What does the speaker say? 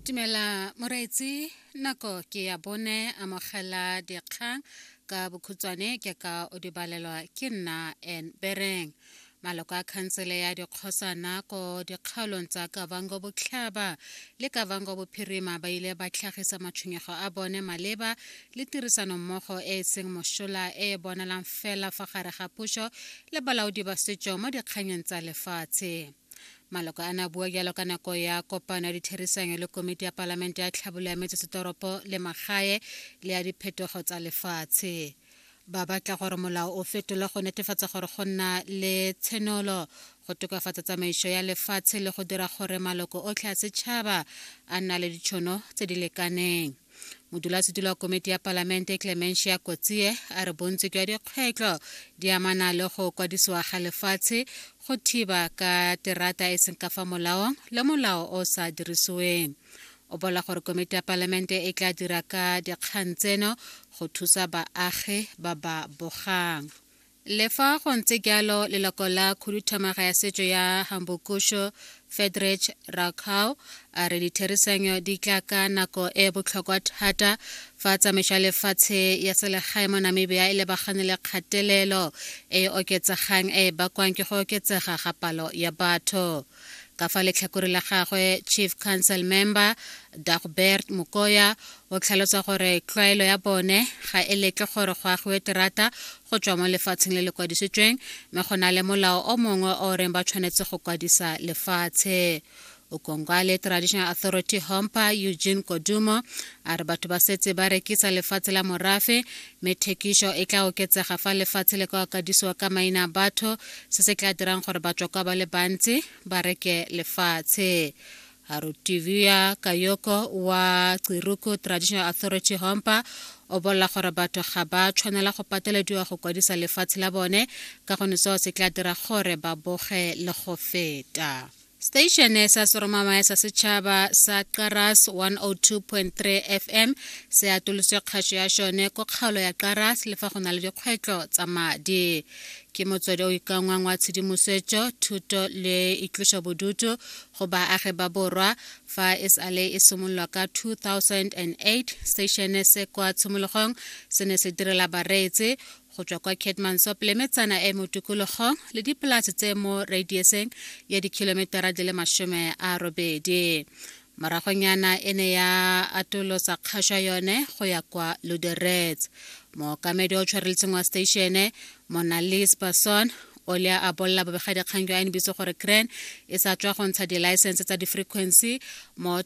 Dumela moreetsi nako ke ya bone amogela dikgang ka bokhutshwane ke ka o di balelwa ke nna en bereng maloko a khansele ya dikgosana ko dikgaolong tsa kavango botlhaba le kavango bophirima ba ile ba tlhagisa matshwenyego a bone maleba le tirisanommogo e e seng mošola e e bonalang fela fa gare ga puso le balaodi ba setso mo dikganyeng tsa lefatshe maloko a ne a bua jalo ka nako ya kopano ya ditherisanyo le komiti ya palamente ya tlhabolo ya metsesetoropo le magae le ya diphetogo tsa lefatshe ba batla gore molao o fetolwe go netefatsa gore go nna le tshenolo go tokafatsa tsamaiso ya lefatshe le go dira gore maloko otlhe a setšhaba a nna le ditšhono tse di lekaneng modulasetilo wa komiti ya palamente clementia kotsie a re bontsi jwa dikgwetlho di amana le go kwadisiwa ga lefatshe go thiba ka terata e seng ka fa molaong le molao o sa dirisiweng o bola gore komiti ya palamente e tla dira ka dikgang tseno go thusa baagi ba ba bogang Le fa go ntse jalo leloko la khuduthamaga ya setso ya Hambokusho Fedrich Rakau a re ditherisanyo di tla ka nako e e botlhokwa thata fa tsamaiso ya lefatshe ya selegae mo Namibia e lebagane le kgatelelo e e oketsegang e e bakwang ke go oketsega ga palo ya batho. ka fa letlhakore la gagwe chief council member dagbert mokoya o tlhalosa gore tlwaelo ya bone ga e letle gore go agiwe terata go tswa mo lefatsheng le le kwadisitsweng mme go na le molao o mongwe o reng ba tshwanetse go kwadisa lefatshe ukongwale traditional authority hompa eugene kodumo a re batho ba setse ba rekisa lefatshe la morafe mme thekišo e tla oketsega fa lefatshe le ka okadisiwa ka maina a batho se se tla dirang gore batswakwa ba le bantsi ba reke lefatshe Arutivia Kayoko wa Tsiruku Traditional Authority Hompa o bolela gore batho ga ba tshwanela go patelediwa go kwadisa lefatshe la bone ka gone seo se tla dira gore ba boge le go feta Station sa Soromamaya sa Setšhaba sa Qaras 102.3 FM se atoloswe kgašo ya šone ko kgaolo ya Qaras le fa go na le dikgwetlo tsa madi. Ke motswedi o ikangwang wa tshedimosetšo, thuto le itloša bodutu go baagi ba borwa fa e sale e simololwa ka 2008 station se kwa tshimologong se ne se direla bareetsi go tswa kwa Keetmansop le metsana e mo tikologong le dipolase tse mo radiuseng ya dikhilometara di le masome a robedi moragonyana e ne ya atolosa kgašwa yone go ya kwa luderets mookamedi o tshwareletseng wa stationne monalis bason o le a bolla bobegadikgang jwa nbc gore cran e sa tswa go ntsha dilaesense tsa di-frequency mo